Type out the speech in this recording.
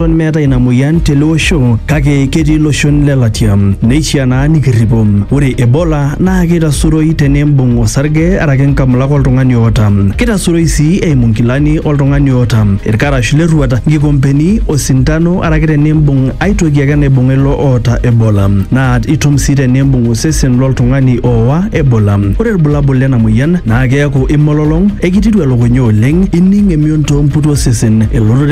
Eton meetae ina moyian tele osho kake ketii iloshon le latia neishiaa naa nikirripo. Ore Ebola naa keitasuroi teneimbung osarge araki nkamulak oltung'ani oota. Keitasuroi sii eimu nkilani oltung'ani oota, ilkarash le rruat, nkikompeni, osintano araki teneimbung ai toki ake naibung'a ilo oota Ebola. Naa itum sii teneimbung osesen lo ltung'ani oowa Ebola. Ore ilbulabul lena moyian naa keaku imololong, eikitiru elukunya oleng, ining emion too mputi osesen, elototo